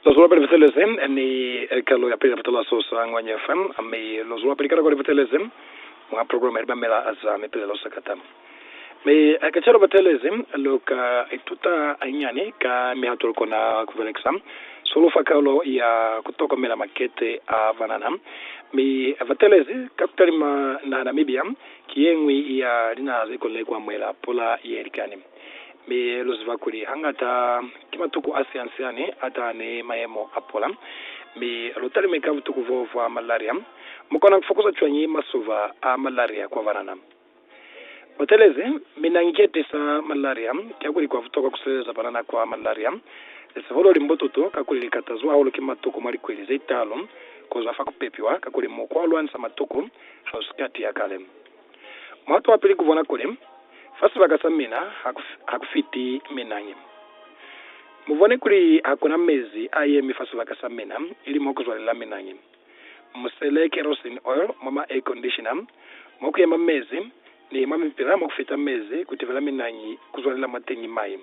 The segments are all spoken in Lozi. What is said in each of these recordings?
Lo zwelapili butelezi ni kalo ya pili ya butalaso za Ngwanya FM, mi lo zwelapili ka nako ni butelezi mwa programa ya Libamela za Mipilelo Sakata. Mi ka cwalo butelezi lu ka ituta hainani ka mihato lu kona ku belekisa zeo lu fa kalo ya ku tokomela makete a banana. Mi butelezi ka kutalima naha Namibia ki yeñwi ya linaha ze konile ku amuhela pula ye likani. Mi lu ziba kuli hangata ki matuku a siansiani a taha ni mayemo a pula. Mi lu talime ka butuku boo bwa malaria. Mu kona ku fokuza cwañi masuba a malaria kwa banana? Butelezi, Mina nge tisa malaria. Kiakuli kwa butokwa ku sileleza banana kwa malaria. Lisiholo li mbututu kakuli li katazwa hahulu ki matuku mwa likweli ze taalu ku zwa fa ku pepiwa, kakuli mukwa wa lwanisa matuku ha u si ka tiya kale. Muhato wa pili kubona kuli fa sibaka sa mina ha ku fiti minangi. Mubone kuli hakuna mezi a yemi fa sibaka sa mina ili mo kuzwalela minangi. Musele kerosene oil mwa ma air conditioner mo kuyema mezi ni mwa mipila mo kufita mezi kutibela minangi kuzwalela mwateñi mai.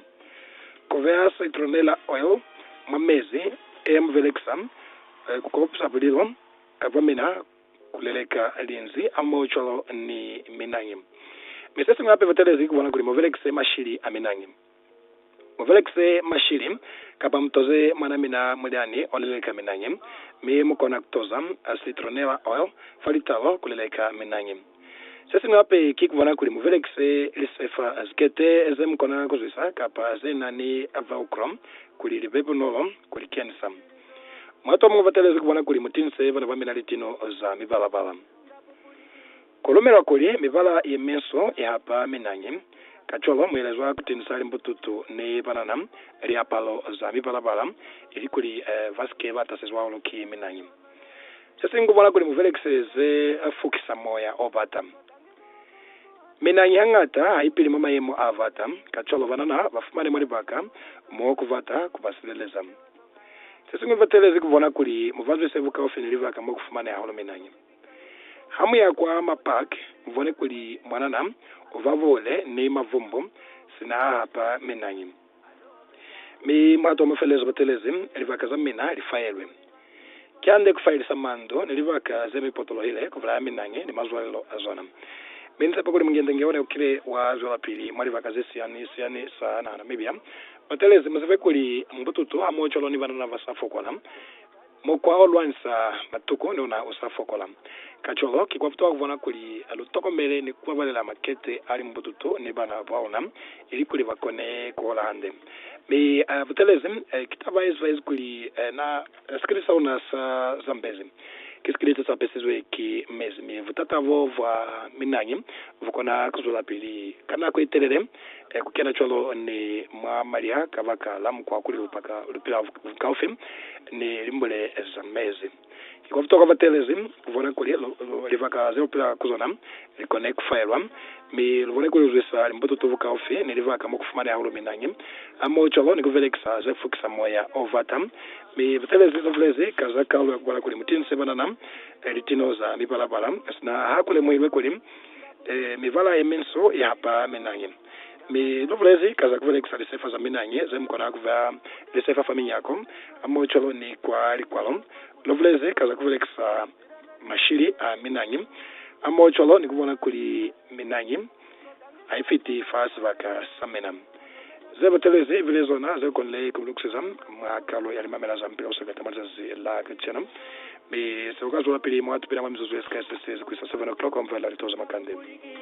Kubeha citronella oil mwa mezi e ya mubelekisa kukopisa bulilo bwa mina. Kuleleka linzwi a moo cwalo ni minangi. Mi sesiñwi hape batelezi kubona kuli mubelekise mashili a minangi. Mubelekise mashili kapa mutoze mwana mina mulyani oleleka minangi, mi mukona kutoza citronella oil fa litalo kuleleka minangi. Sesiñwi hape ki kubona kuli mubelekise lisefa, zikete zemukona kuzwisa kapa zenani velcro kuli libe bunolo kulikenisa. Mwatu amun'wi batalezi kubona kuli mutinse bana bamina litino za mibala-bala. Kulumelwa kuli mibala yeminso ihapa minañi, kacwalo muelezwa kutinsa limbututu nebanana liapalo za mibala-bala ilikuli basike batasezwa hahulu ki minañi. Sesiñwi kubona kuli mubelekise ze fukisa moya obata. Minañi hañata haipili mwa mayemo abata, kacwalo banana bafumane mwa libaka mo kubata kubasileleza. Se siñwi fa telezi ku bona kuli mu bazwe se bukaufi ni libaka mo ku fumaneha hulu minanyi. Ha mu ya kwa ma park, mu bone kuli mwanana u ba bule ni mavumbu sina a hapa minanyi. Mi mulato wa mufelezo batelezi, libaka za mina li faelwe. Kihande kufayelisa mandu ni libaka zemi potolohile kubulaya minangi ni mazwalelo azona. Mi nitshepa kuli Munyende ngeone ukile wa zwelapili mwa libaka zesiyani siyani sa naha Namibia. Batelezi muzibe kuli mbututu hamoho cwalo ni banana basa fokola, mukwa olwanisa matuku ni ona usa fokola. Kacwalo, ki kwabutuha kubona kuli lutokomele ni kubabalela makete ali mbututu ni bana baona ilikuli bakone kuhola hande. Mi batelezi, ki taba yezibahezi kuli na. Sikili sa luna sa Zambezi ki sikili se sa pesizwe ki mezi, mi butata bo bwa minangi bu kona ku zwelapili ka nako ye telele ku kena cwalo ni mwa malya kabaka la mukwa kuli lu paka lu pila bukaufi ni limbule za mezi. Ki kwa butokwa batelezi ku bona kuli libaka ze lu pila ku zona Li kone ku faelwa, mi lu kone ku lwisa limbuto to bukaufi ni libaka mo ku fumaneha luminañi, hamohocwalo ni ku belekisa ze fukisa moya o bata. Mi butelezi lu bulezi ka za kaulo ya ku bala kuli, Mutinse banana litino za mipala-pala, sina ha ku lemuhilwe kuli mibala ye minso i hapa minañi. Mi lu bulezi ka za ku belekisa lisefa za minañi ze mu kona ku beha lisefa fa minyako, hamohocwalo ni kwa likwalo. Lu bulezi ka za ku belekisa. mashili a minangi a mo cwalo ni ku bona kuli minangi ha i fiti fa sibaka sa mina. Ze batelezi i bile zona ze konile ku lukiseza mwa kalo ya limamela za Mupila o Sebeta mwa lizazi la kacenu, mi se u ka zwelapili mwa tupina mwa mizuzu ye sikai se sezi ku isa 7:00 mwa Mvula Litozo Makande.